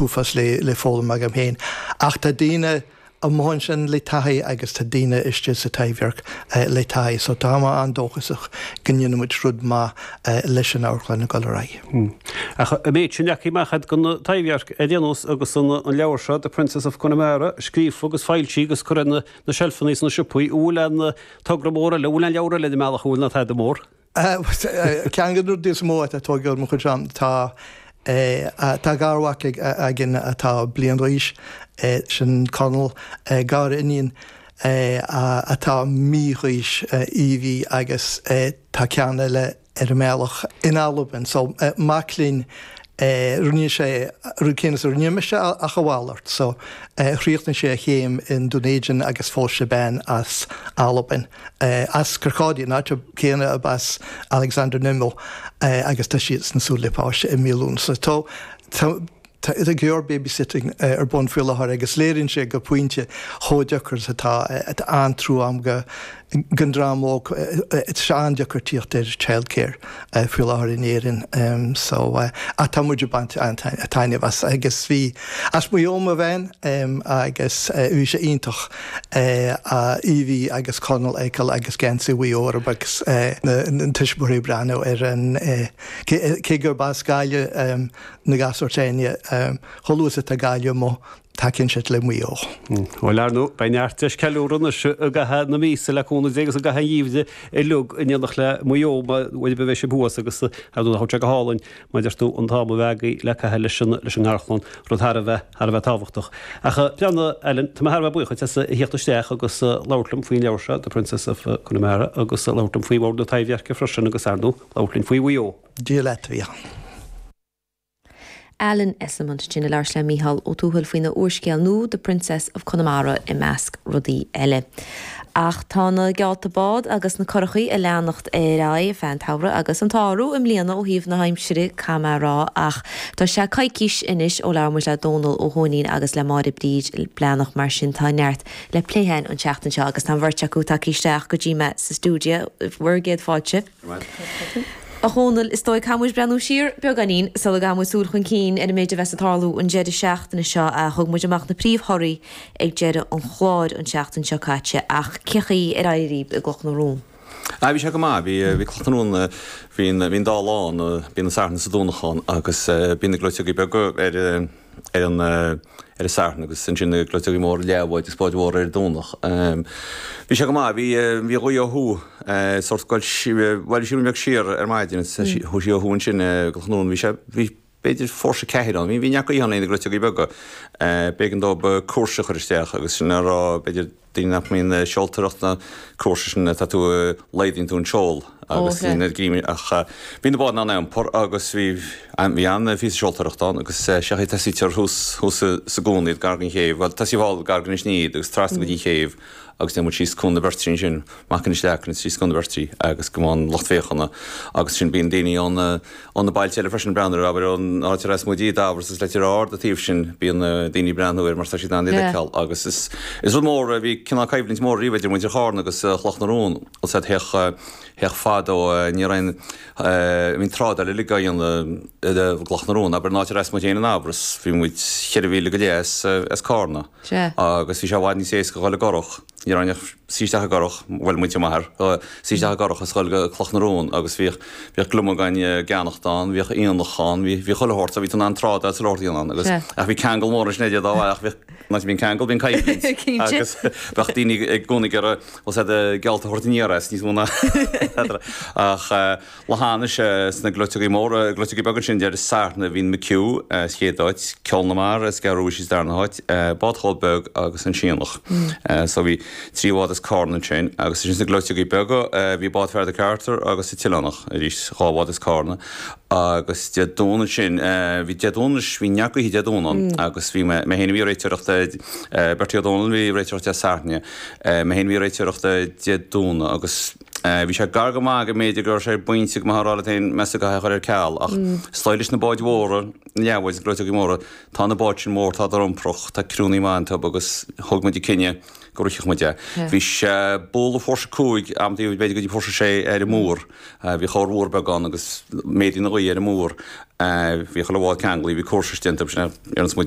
uafás le foghlaim agam féin, ach tá daoine amuigh ansin le taithí agus tá daoine istigh sa Taibhdhearc le taithí, so tá mé an-dóchasach go ndéanfaidh muid rud maith leis an amharclann ag dul ar aghaidh. Ach an méid sin leagtha amach agat don Taibhdhearc, ar aon nós, agus an leabhar seo, The Princess of Connemara, scríofa agus foilsithe agus curtha ar na seilfeanna sna siopaí, an bhfuil an togra mór eile, an bhfuil an leabhar eile ar an mbealach, an bhfuil, ná tada mór? Ceann de na rudaí is mó atá tógtha agam faoi seo, tá garmhac againn atá bliain d'aois, sin Conall, gariníon atá mí d'aois, Evie, agus tá ceann eile ar an mbealach in Albain. So, mac linn, rinne sé an rud céanna is a rinne mise ach a mhalairt. So, chríochnaigh sé a chéim in Dunedin agus phós sé bean as Albain. As Kirkcaldy, an áit chéanna arb as Alexander Nimmo agus tá siad sin ag súil le páiste i mí Lúnasa. Tá go leor babysitting ar bun faoi láthair agus léiríonn sé go pointe chomh deacair is atá. Tá an-trua agam don dream óg. Tá sé an-deacair tíocht ar childcare. faoi láthair in Éirinn. So tá muid ag baint an-taitneamh as agus bhí is as Maigh Eo mo bhean agus bhí sé iontach Evie agus Conall a fheiceáil agus geansaí Mhaigh Eo orthu agus na tuismitheoirí ag breathnú ar an cé gurb as Gaillimh na gasúir s'againne chomh luath is atá Gaillimh amuigh Tacaíonn siad le Maigh Eo. Bhuel, ar ndóigh, beidh neart deis ceiliúradh anois i gcaitheamh na míosa le cúnamh Dé agus i gcaitheamh an gheimhridh uilig in éineacht le Maigh Eo, nuair a bheidh siad thuas agus, ar ndóigh, nach raibh sé go hálainn, mar a deir tú, an t-am a bheith agat le caitheamh leis an ngarchlann, rud thar a bheith, thar a bheith tábhachtach. Ach breathnaigh, Alan, tá mé thar a bheith buíoch duit as a theacht isteach agus labhairt liom faoin leabhar seo, The Princess of Connemara, agus labhairt liom faoi Bhord na Taibhdheirce freisin agus, ar ndóigh, labhairt linn faoi Mhaigh Eo. Dia leat, a Mhic. Alan Esslemont sin a labhairt le Mícheál Ó Tuathail faoina úrscéal nua The Princess of Connemara i measc rudaí eile. Ach tá na geallta bád agus na curachaí a leanacht ar aghaidh feadh an tsamhraidh agus an t-ádh orthu i mbliana ó thaobh na haimsire caithfidh mé a rá ach tá sé coicís anois ó labhair muid le Dónal Ó hÓinín agus le Máire Bríd Breathnach mar sin tá neart le plé a'inn an tseachtain seo agus tá an bheirt acu tagtha isteach go dtí mé sa stiúideo bhur gcéad fáilte. A Dhónaill, is dóigh, caithfidh muid breathnú siar beagáinín sula gcaithfidh muid súil chun cinn ar an méid a bheas ag tarlú an deireadh seachtaine seo. Thug muid amach na príomh-thorthaí ag deireadh an chláir an tseachtain seo caite ach cén chaoi ar éirigh linn i gCloch na Rón? Ah, bhí sé go maith. Bhí Cloch na Rón, bíonn dá lá ann, bíonn an Satharn is an Domhnach ann agus bíonn na gleoiteogaí beaga ar. ar an Satharn agus ansin gleoiteogaí móra, leathbháid agus báid mhóra ar an Domhnach. Bhí sé go maith, bhí bhí gaoth ó thuaidh sórt scoilt, bhuel shiúil mé beag siar ar maidin agus chuaigh sí ó thuaidh ansin go Chnún, bhí sé, bhí b'fhéidir fórsa ceathair ann, bhí neart gaoithe ann ag na gleoiteogaí beaga, b'éigean dóibh cúrsa a chur isteach agus sin le rá b'fhéidir, Daoine nach mbíonn ag seoltóireacht na cúrsa sin atá tú a laghdaíonn tú an seol agus daoine ar gcímí ach bhí na báid in ann a iompar agus bhí bhí an-phíosa seoltóireacht ann agus sé an chaoi a dtosaítear thuas thuas sa gcúinne iad gar den chéibh, bhuel tosaíodh thall gar d'Inis Ní iad agus trasna go dtí an chéibh agus déanamh síos Cuan na Beirtrí ansin. Amach Inis Leacan síos Cuan na Beirtrí agus go mbeidh an lucht féachana agus sin bíonn daoine ón ó na bailte eile freisin breathnú air abair ón áit ar as muid i nDamhras is Leitir Ard a taobh sin bíonn daoine breathnú air mar tá siad in ann iad a fheiceáil agus is is rud mór a bhí cineál coimhlint mór riamh idir muintir Charna agus Chloch na Rón os a theach theach fadó níor aon bhíodh an trádáil uilig á dhéanamh i gCloch na Rón abair an áit ar as muid féin i nDamhras bhí muid cheithre mhíle go leith as as Carna agus bhí sé i bhfad níos éasca dhul i gcurach Ní raibh ann ach suí isteach i gcurach, bhuel, muintir m'athar, suí isteach i gcurach is a dhul go Cloch na Rón agus bhíodh, bhíodh gliomaigh dhá gceannacht ann, bhíodh aonach ann, bhí, bhí chuile shórt ann, bhí tú in ann trádáil agus chuile shórt a dhéanamh ann agus, ach bhí ceangal mór ansin idir dá bharr ach bhíodh, má bíonn ceangal bíonn coimhlint agus bheadh daoine i gcónaí ag iarraidh, bhfuil a fhios agat, geallta a thabhairt aniar as níos mó ná, ach. Leanfaidh sé sna gleoiteogaí móra, gleoiteogaí beaga ansin Dé Sathairn, bhí an McHugh sa chéad áit, Ceol na Mara is Gearóid Rúisí sa darna háit, Bád Chóil Beag agus An Sionnach. So bhí trí bhád as Carna ansin. Agus ansin sna gleoiteogaí beaga bhí Bád Fear Mhic Arthur agus An tOileánach, arís dhá bhád as Carna. Agus Dé Domhnaigh ansin, bhí Dé Domhnaigh anois, bhí neart gaoithe Dé Domhnaigh ann agus bhí mé féin a bhí ag réiteoireacht, Bertie Ó Dónaill a bhí ag réiteoireacht Dé Sathairn, mé féin a bhí ag réiteoireacht Dé Domhnaigh agus. Bhí sé gar go maith go mb'fhéidir go raibh sé ar an bpointe go mbeifeá ag rá leat féin meas a dhath a chur ar ceal, ach is dóigh leis na báid mhóra, na leathbháid, na gleoiteogaí móra, tá na báid sin mór, tá siad iomprach, tá criúnnaí maith iontu agus thug muid an cinneadh go rithfeadh muid é. Bhí sé bualadh fórsa cúig, amantaí b'fhéidir go dtí fórsa sé ar an múr. Bhí corrmhúr beag ann agus méadaíonn an ghaoth ar an múr. Bhí chuile bhád ceanglaithe, bhí cúrsa déanta, bhí sé ar an smididh.